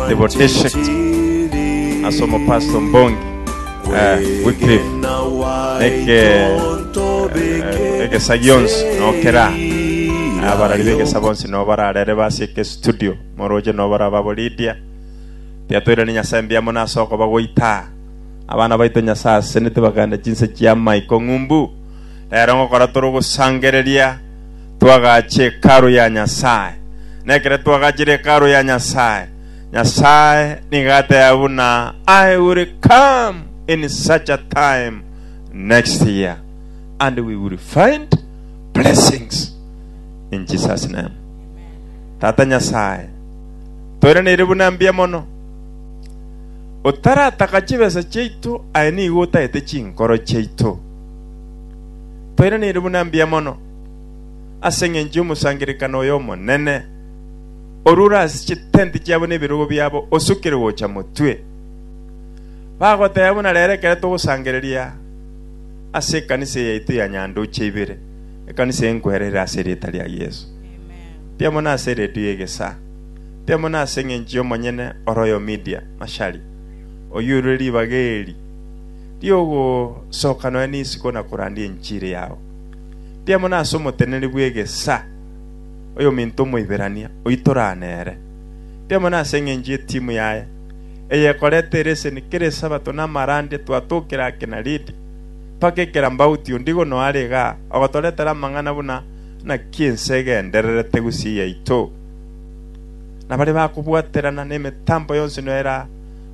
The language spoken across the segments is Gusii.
the Boteshek ase omopastor ombongi eh, Wycliffe neke eh, egesa gionsi nokera abarari begesa bonsi no bararere base eke studio moroche no barababo Lydia tiatoirani nyasae mbia muna ase okoba goita abana baito nyasae asenete baganda chinse chia maiko ng'umbu rero ngokora toro gosangereria Twagache Hekalu ya Nyasae. Na ekero twagachire Hekalu ya Nyasae, Nyasae nigo ateba buna, I will come in such a time next year, and we will find blessings in Jesus' name. Tata Nyasae, toiraneire buna mbuya mono. Otarataka chibesa chiaito, aye nigo otagete chinkoro chiaito. Toiraneire buna mbuya mono. ase engencho y'omosangererekano oyo omonene, orure ase chitenti chiabo na ebirogo biabo osukire gocha motwe. Bagoteba buna rero ekero togosangereria ase ekanisa yaito ya Nyandoche ibere, ekanisa enkwera ere ase erieta ria Yeso. Tia mono ase eredio ya egesaa. Tia mono ase engencho y'omonyene oroyo Media, Mashari. Oyiurure ribaga eri riogosoka nonya nisiko na korandia enchiri yao. Ndiamona ase omoteneneri bw'egesa, oyominto Omoiberania, oitorana nere. Ndiamona ase engencho y'etimu yaye, eyekorete ereseni kera Esabato na amarandi etwatokire ake na ridi, mpaka ekerambauti ondigo noare iga ogotoretera amang'ana buna naki ense egendererete gusii yaito. Na baria bakobwaterana nemetambo yonsi noera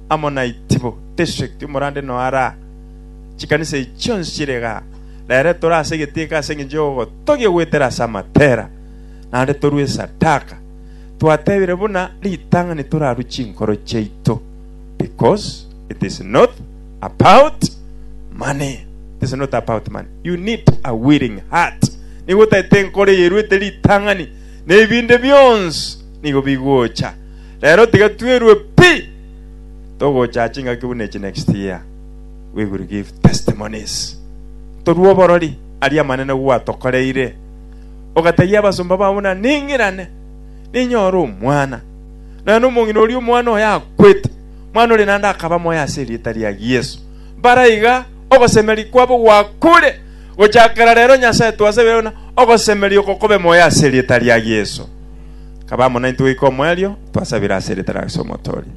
amo naitibo, district, omorande noara, chikanisa echi chionsi chire iga, na ere tore ase egetinka ase engencho y'ogotogia goetera ase amatera, naende torue esadaka, twatebire buna ritang'ani torarue chinkoro chiaito, because it is not about money, it is not about money, you need a willing heart, nigo otagete enkoro eyeruete ritang'ani, na ebinde bionsi nigo bigocha. Rero tiga twerue pi togocha chingaki buna echi next year. We will give testimonies. Torua oborori aria amanene gwatokoreire. Ogatebia abasomba babo na ning'irane ninyore omwana. Nonya na omong'ina oria omwana oyo akwete. Mwana ore nande akaba moyo ase erieta ria Yesu. Baraiga ogosemeria kwabo gwakure. Gochakera rero Nyasae twasebire buna ogosemeria oko kobe moyo ase erieta ria Yesu. Kaba amo naintwe goika omoerio twasabire ase erieta ria Yesu Omotoria.